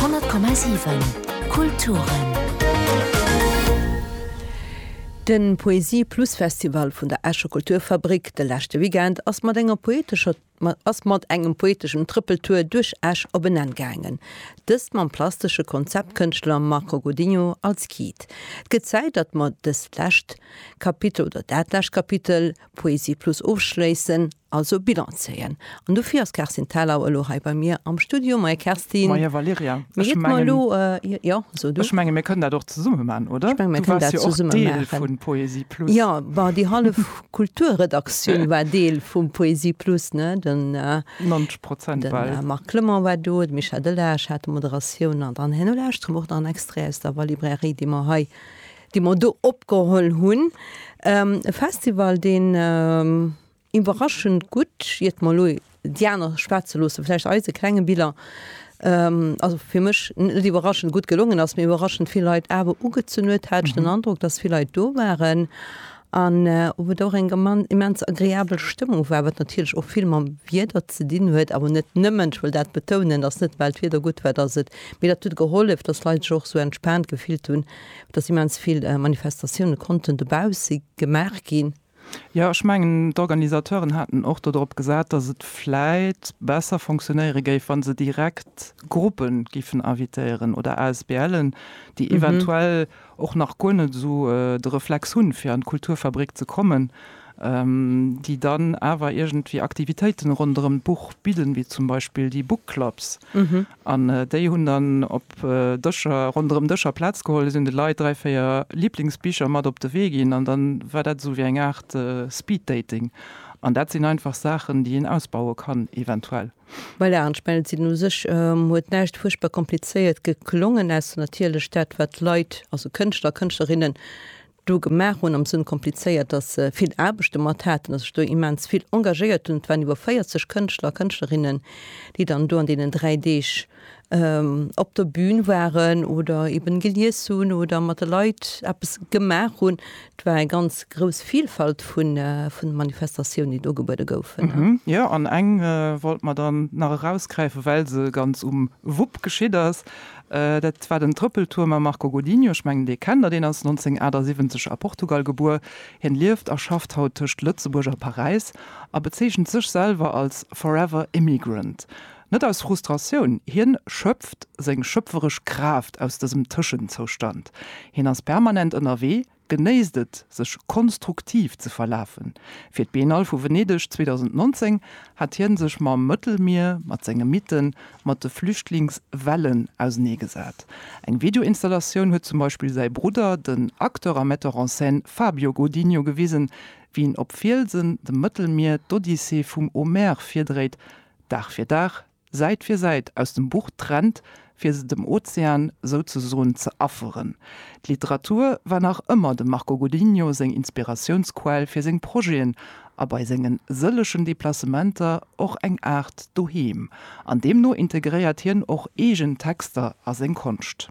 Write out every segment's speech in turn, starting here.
100,7 Kulturen. De Poesie Plus Festival vun der Escher Kulturfabrik de leschte Weekend ass mat enger poetescher ass mat engem poeteschen Trëppeltour duerch Esch op en Enn gaangen. Dëst mam plastesche Konzeptkënschtler Marco Godinho als Guide. Et gëtt Zäit, datt mer dëst lescht Kapitel oder dat lescht Kapitel Poesie Plus ofschléissen, also Bilan zéien. An dofir ass d'Kerstin Thalau elo hei bei mir am Studio. Moie Kerstin. Moie Valerija. Ech menge mir kënnen dat och zesumme maachen, oder? Ech menge mir kënnen dat zesumme maachen. Du waars jo och Deel vu Poesie Plus. Jo, bon, déi hallef Kulturredaktioun war Deel vu Poesie Plus, ne? 90 Prozent bal. De Marc Clement war do, de Michel Delage hat d'Moderatioun an dann herno lauschtere mer och nach en Extrait aus der War-Librairie, déi mer hei. déi mer do opgeholl hunn, e Festival deen iwwerraschend gutt, iert mer elo déi aner schwätze loosse, vläicht eise klenge Biller, also fir mech net iwwerraschend gutt gelongen ass, mee iwwerraschend vill Leit awer ugezunn huet, hat ech den Androck, datt vill Leit do waren an wou et och eng immens agreabel Stëmmung war, wat natierlech och vill mam Wieder ze dinn huet, awer net nëmmen, ech wëll dat betounen, ass net well d'Wieder gutt war, datt et, mee dat huet gehollef, datt d'Leit sech och esou entspaant gefillt hunn. dass immens vill Manifestatioune konnten dobausse gemaach ginn. Jo, ech mengen, d'Organisateuren haten och dodrop gesat, dass et vläit besser fonctionnéiere géif, wa se direkt Gruppe giffen invitéieren oder ASBLen, déi eventuell och nach guer net esou de Reflex hunn, fir an d'Kulturfabrik ze kommen, déi dann awer iergendwéi Aktivitéiten ronderëm d'Buch bidden, wéi zum Beispill déi Book Clubs. An déi hunn dann op Dëscher, ronderëm Dëscher Plaz geholl, si hunn de Leit dräi, véier Liblingsbicher mat op de Wee ginn an dann war dat esou wéi eng Aart Speed Dating. An dat sinn einfach Saachen, déi een ausbaue kann eventuell. Voilà, an ech mengen, et sinn u sech, huet näischt fuerchtbar komplizéiert geklongen, ausser natierlech dat, wat d'Leit, also Kënschtler a Kënschtlerinnen, do gemaach hunn, am Sënn komplizéiert, datt se vill Aarbecht domat haten, datt sech do immens vill engagéiert hunn. Et waren iwwer 40 Kënschtler a Kënschtlerinnen, déi dann do an deenen dräi Deeg op der Bün waren oder eben gelies hunn oder mat de Leit eppes gemaach hunn. Et war eng ganz grouss Vilfalt vun Manifestatiounen, déi do ugebuede goufen. Jo, an eng wollte mer dann nach erausgräifen, well se ganz um Wupp geschitt ass, Dat war den Trëppeltour mam Marco Godinho. Ech mengen, Dir kennt deen, ass 1978 a Portugal gebuer. Hien lieft a schafft haut tëscht Lëtzebuerg a Paräis a bezeechent sech selwer als Forever Immigrant. Net aus Frustratioun, hien schöpft seng schöpferesch Kraaft aus dësem Tëschenzoustand. Hien ass permanent ënnerwee, Genéisst et, sech konstruktiv ze verlafen. Fir d'Biennale vu Venedeg 2019 hat hien sech mam Mëttelmier, mat senge Mythen, mat de Flüchtlingswellen ausenee gesat. Eng Videoinstallatioun huet zum Beispill säi Brudder, den Acteur a Metteur en scène Fabio Godinho gewisen, wéi en op Fielsen dem Mëttelmier d'Odyssee vum Homère virdréit, Dag fir Dag, Säit fir Säit aus dem Buch trennt, fir se dem Ozean souzesoen ze afferen. D'Literatur war nach ëmmer dem Marco Godinho seng Inspiratiounsquell fir seng Projeten a bei sengen sëllegen Deplacementer och eng Aart Doheem. An deemno integréiert hien och eegen Texter a seng Konscht.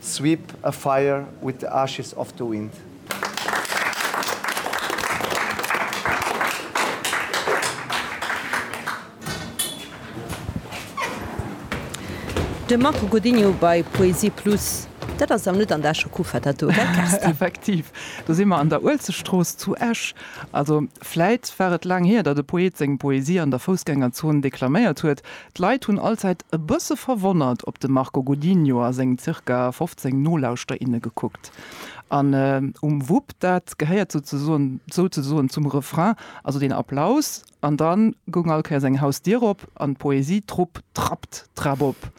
Sweep a fire with the ashes of the wind. De Marco Godinho bei Poesie Plus. Dat ass awer net an der Escher Kufa, dat do, gell Kerstin? Effektiv, do si mer an der Uelzechtstrooss zu Esch. Also, vläit war et laang hier, datt e Poet seng Poesie an der Foussgängerzon deklaméiert huet. D'Leit hunn allzäit e bësse verwonnert op de Marco Godinho a seng zirka 15 Nolauschterer, inne gekuckt. An um Wupp, dat gehéiert souzesoen zum Refrain, also deen Applaus, an da goung all Kéiers eng Hausdier op an d'Poesie-Trupp trappt d'Trap op.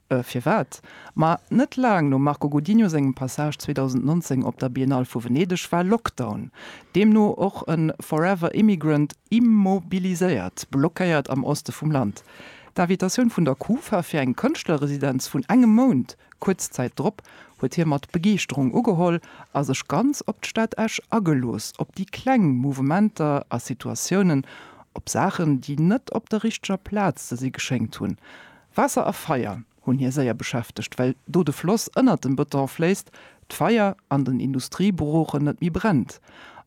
Firwat? Ma net laang nom Marco Godinho sengem Passage 2019 op der Biennale vu Venedeg war Lockdown. Deemno och e Forever Immigrant immobiliséiert, blockéiert am Oste vum Land. D'Invitatioun vun der Kufa fir eng Kënschtlerresidenz vun engem Mount, kuerz Zäit drop, huet hie mat Begeeschterung ugeholl a sech ganz op d'Stad Esch agelooss, op déi kleng Mouvementer a Situatiounen, op Saachen, déi net op der richteger Plaz ze si geschéngt hunn. Waasser a Feier. hunn hie séier beschäftegt, well do de Floss ënnert dem Bëton fléisst, d'Feier an den Industrieburochen net méi brennt.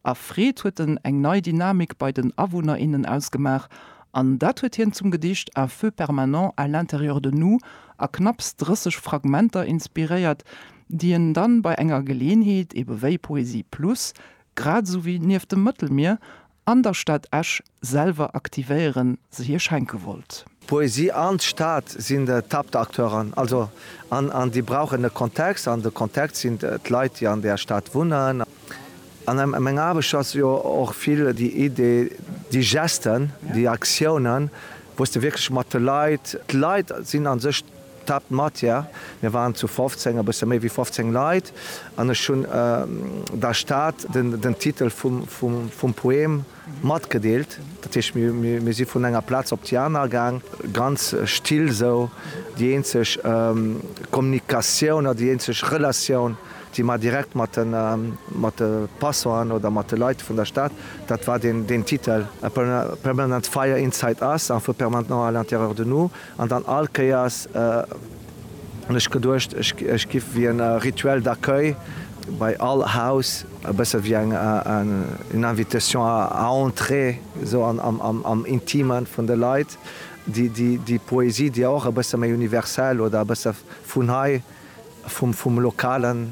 A Freed huet en eng nei Dynamik bei den Awunner, innen ausgemaach, an dat huet hien zum Gedicht Un feu permanent à l'intérieur de nous a knapps 30 Fragmenter inspiréiert, déi en dann bei enger Geleeënheet, ebe wéi Poesie Plus, grad esou wéi Nieft dem Mëttelmier An der Stad Esch selwer aktivéieren, se hir schenke wollt. Poesie an d'Stad sinn d'Haaptacteuren, also an déi brauchen e Kontext an de Kontext sinn d'Leit, déi an där Stad wunnen. An meng Aarbecht ass jo och vill déi Idee, déi Gesten, déi Aktiounen, wou s de wierklech mat de Leit, d'Leit sinn a sech D'Tap Matière, mir waren zu 15, e bësse méi wéi 15 Leit, an ech hunn der Stad den Titel vum Poem matgedeelt. Dat heescht, mir si vun enger Plaz op déi aner gaang, ganz still esou. Déi eenzeg Kommunikatioun oder déi eenzeg Relatioun, déi mer direkt mat de Passanten oder mat de Leit vun der Stad, dat war deen Titel, A permanent fire inside us, un feu permanent à l'intérieur de nous. An dann all Kéiers hunn ech geduecht, ech giff wéi en Rituel d'accueil bei all Haus, e bësse wéi eng une invitation à entrer esou am Intime vun de Leit, déi Poesie, déi och e bësse méi universell oder e bësse vun hei, vum Lokalen.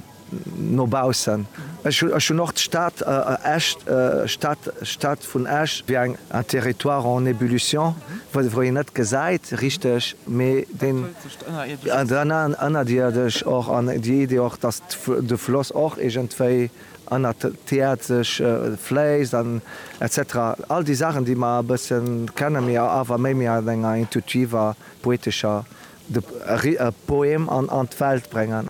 No baussen. Ech hunn och d'Stad Esch, d'Stad vun Esch, wéi eng un territoire en ébullition, wou een net gesäit richteg, mee deen ënnerdierdeg och, an déi Idee och, datt de Floss och iergendwéi ënnert d'Äerd sech fléisst an etc. All déi Saachen, déi mer e bësse kennen, mee awer méi méi an enger intuitiver, poetescher, de Poem an d'Welt bréngen.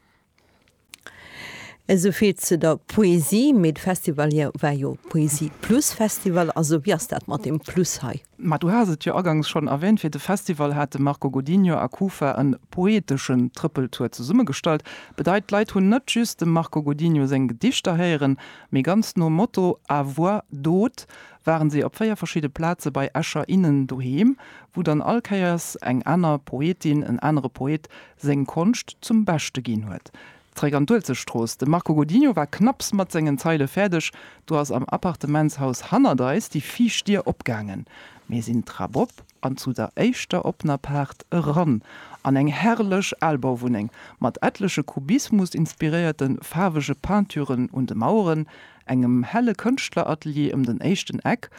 Esou vill zu der Poesie, mee de Festival hei war jo e Poesie Plus Festival, also wéi ass dat mat dem Plus hei? Ma du has et jo agangs schonn erwähnt, fir de Festival hat de Marco Godinho a Kufa en poeteschen Trëppeltour zesummegestallt. Bedeit, d'Leit hunn net just dem Marco Godinho seng Gedichter héieren, mee ganz nom Motto à voix d'haut waren si op véier verschidde Plaze bei Escher innen doheem, wou dann all Kéiers eng aner Poetin, en anere Poet seng Konscht zum Beschte ginn huet. Zeréck an d'Uelzechtstrooss, De Marco Godinho war knapps mat sengen Zeile fäerdeg, du ass am Appartementshaus hannert eis déi viischt Dier opgaangen. Mir sinn d'Trap op an zu der éischter oppener Paart eran, an eng herrlech Albauwunneng, mat etleche Kubismus-inspiréierte faarwege Peinturen un de Maueren, engem helle Kënschtleratelier ëm den éischten Eck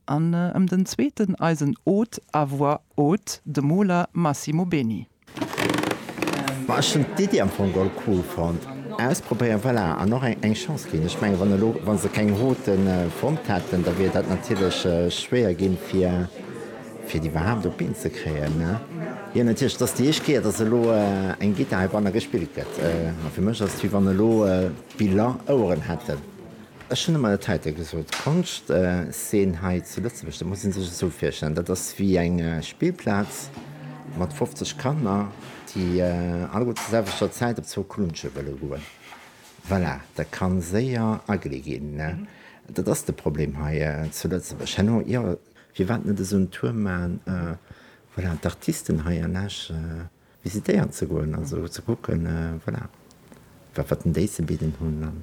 an ëm den zweeten eisen Hôte à voix haute, de Moler Massimo Beni. Ech hunn d'Iddi am Fong geholl cool fonnt. Ausprobéieren, voilà, an och eng Chance ginn. Ech mengen, wann elo, wa se keng Route fonnt hätten, da wier dat natierlech schwéier ginn, fir, fir déi iwwerhaapt op d'Been ze kréien. Jo, natierlech, et ass déi éischt Kéier, datt elo eng Gittar heibanne gespillt gëtt. A fir mech ass et, wéi wann elo d'Biller Oueren hätten. Ech hunn emol et heite gesot, d'Konschtszen hei zu Lëtzebuerg, dat muss ee sech esou virstellen, dat ass wéi eng Spillplaz mat 50 Kanner, déi alleguer zur selwechter Zäit op zwou Klunsche wëlle goen. Voilà, dat ka séier ugly ginn. Dat ass de Problem hei zu Lëtzebuerg. Herno, jo, firwat net esou en Tour maachen, voilà, d'Artisten hei an Esch visitéieren ze goen, also ze kucken, voilà, wat déi ze bidden hunn.